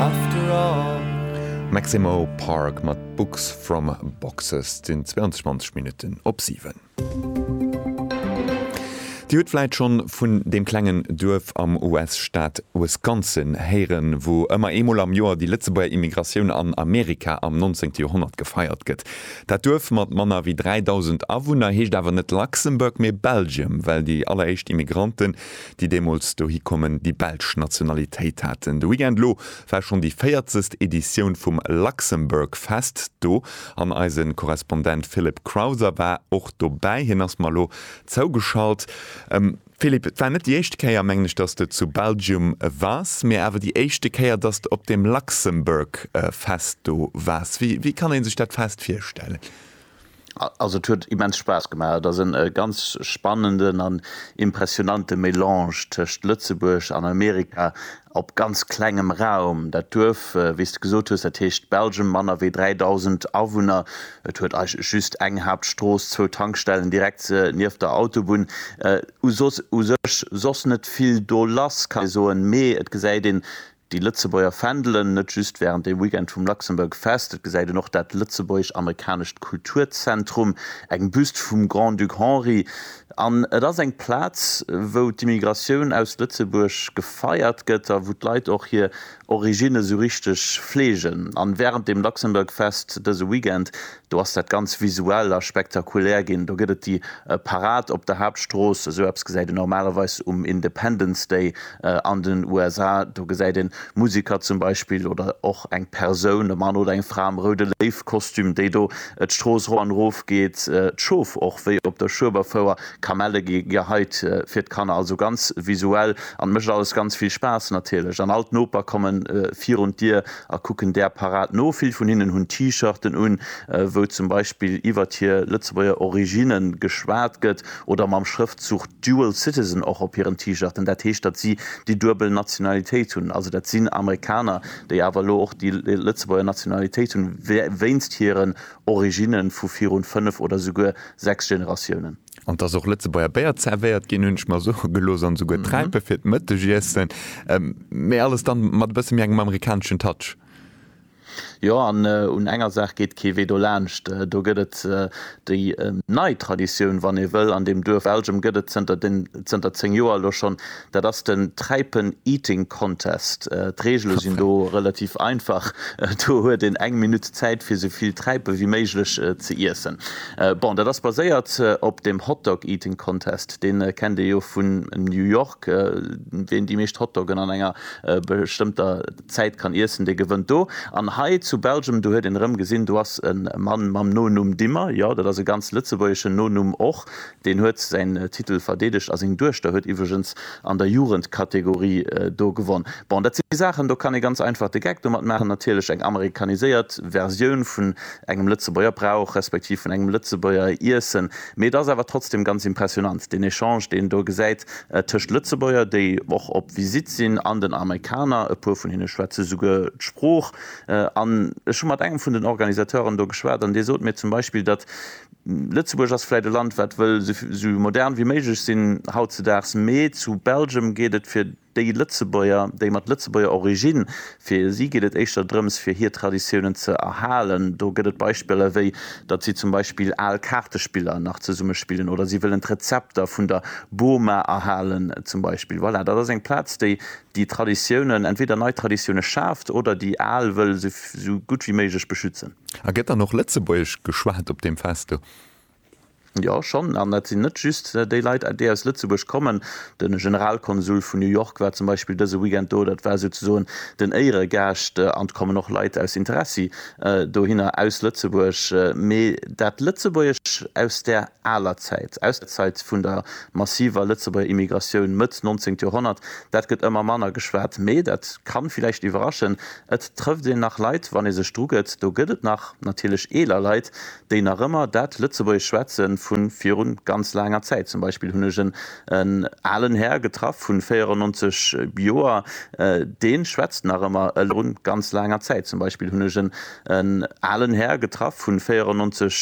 After all. Maximo Park mat Books from Boxes. Et sinn 22 Minutten op 7. Dir hutt vläit schonn vun deem klengen Duerf am US-Staat Wisconsin héieren, wou ëmmer eemol am Joer déi Lëtzebuerger Immigratioun an Amerika am 19. Joerhonnert gefeiert gëtt. Dat Duerf mat manner wéi 3.000 Awunner heescht awer net Luxembourg, mee Belgium, well déi alleréischt Immigranten déi deemools dohi kommen, déi belsch Nationalitéit haten. De Weekend elo war schonn déi véierzegst Editioun vum Luxembourg Fest do an eise Korrespondent Philip Crowther war och dobäi. Hien ass mer elo zougeschalt. Philip, et war net déi éischte Kéier, mengen ech, datt s de zu Belgium wars, mee awer déi éischte Kéier, datt s de op deem Luxembourg Fest do wars. Wéi kann ee sech dat Fest virstellen? Also et huet immens Spaass gemaach. Et ass en ganz spannenden an impressionante Melange tëscht Lëtzebuerg an Amerika op ganz klengem Raum. Dat Duerf, wéi s de gesot hues, dat heescht Belgium, manner wéi 3.000 Awunner. Et huet eigentlech just eng Haaptstrooss, zwou Tankstellen direkt nieft der Autobunn u soss. U sech soss net vill do lass, ka ee soen, mee et gesäit een Déi Lëtzebuerger Fändelen, net just wärend dem Weekend vum Luxembourg Fest. Et gesäit een och dat lëtzebuergesch-amerikanescht Kulturzentrum, eng Büst vum Grand-Duc Henri. An et ass eng Plaz, wou d'Immigratioun aus Lëtzebuerg gefeiert gëtt a wou d'Leit och hir Originne sou richteg fleegen. A wärend dem Luxembourg Fest dëse Weekend Do ass dat ganz visuell a spektakulär ginn. Do gëtt et déi Parad op der Haaptstrooss, esou eppes gesäit een normalerweis um Independence Day an den USA. Do gesäit een Musiker zum Beispill oder och eng Persoun, e Mann oder eng Fra am Roude Léiw-Kostüm, déi do d'Strooss rop an erof geet. D'Schof och, wéi op der Schueberfouer, Kamelle gi geheit fir d'Kanner. Also ganz visuell an mécht alles ganz vill Spaass natierlech. An all d'Noper komme virun d'Dier a kucken där Parad no. Vill vun hinnen hunn T-Shirten un, wou zum Beispill iwwert hir Lëtzebuerger Originne geschwat gëtt, oder mam Schrëftzuch Dual Citizen och op hiren T-Shirten. Dat heescht, datt si déi duebel Nationalitéit hunn. Also dat sinn Amerikaner, déi awer elo och déi Lëtzebuerger Nationalitéit hunn, wéinst hiren Originne vu virun fënnef oder souguer sechs Generatiounen. An dass och Lëtzebuerger Béier zervéiert ginn, hunn ech mer soe gelooss, an esouguer Träipe fir d'Mëttegiessen, mä alles dann mat e bësse méi engem amerikaneschen Touch. Jo, an un enger Saach geet kee Wee dolaanscht, do gëtt et déi nei Traditioun, wann ee wëll, an deem Duerf Elgem gëtt et zënter 10 Joer elo schonn Dat ass den Träipen Eating Contest. D'Reegele sinn do relativ einfach, do huet een eng Minutt Zäit fir sou vill Träipe wéi méiglech ze iessen. Bon, dat ass baséiert op dem Hot Dog Eating Contest, dee kennt ee jo vun New York. Ween déi meescht Hotdoggen an enger bestëmmter Zäit kann iessen, dee gewënnt do. An hei zu Belgium, do huet een erëm gesinn, do ass e Mann mam Nonumm Dimmer, jo, dat ass e ganz lëtzebuergeschen Nonumm och, Deen huet säin Titel verdeedegt a seng Duechter huet iwwregens an der Jugendkategorie do gewonn. Bon, dat si Saachen, do kann ee ganz einfach de Geck domat maachen. Natierlech eng amerikaniséiert Versioun vun engem Lëtzebuerger Brauch, respektiv vun engem Lëtzebuerger Iessen. Mee et ass awer trotzdem ganz impressionant, deen Echange, deen een do gesäit tëscht Lëtzebuerger, déi och op Visitt sinn, an den Amerikaner. E puer vun hinne schwätze souguer d'Sprooch. An ech hu mat engem vun den Organisateuren do geschwat an dee sot mir zum Beispill, datt Lëtzebuerg ass vläit e Land wat wëll sou modern wéi méiglech sinn hautzedaags, mee zu Belgium geet et fir déi Lëtzebuerger, déi mat Lëtzebuerger Origine, fir si geet et éischter drëms fir hir Traditiounen ze erhalen. Do gëtt et Beispiller wéi datt si zum Beispill al Kaartespiller nach zesumme spillen oder si wëllen d'Rezepter vun der Boma erhalen zum Beispill. Voilà, dat ass eng Plaz déi déi Traditiounen, entweder nei Traditioune schaaft oder déi al wëll sou gutt wéi méiglech beschützen. A gëtt dann och Lëtzebuergesch geschwat op deem Fest do? Jo, schonn. An dat sinn net just déi Leit, déi aus Lëtzebuerg kommen. De Generalkonsul vun New York war zum Beispill dëse Weekend do. Dat war souzesoen den Éieregaascht. An et kommen och Leit aus Interessi dohinner, aus Lëtzebuerg. Mee dat Lëtzebuergesch aus där aler Zäit, aus der Zäit vun der massiver Lëtzebuerger Immigratioun Mëtt nonzéngt Joerhonnert. Dat gëtt ëmmer manner geschwat, mee dat ka villäicht iwwerraschen, et trëfft een nach Leit, wann ee sech drugëtt. Do gëtt et nach natierlech eeler Leit, déi nach ëmmer dat Lëtzebuergesch schwätze vu viru ganz laanger Zäit. Zum Beispill hunn ech en alen Här getraff vu 94 Joer, dee schwätzt nach ëmmer elo vu viru ganz laanger Zäit. Zum Beispill hunn ech en alen Här getraff vu 94.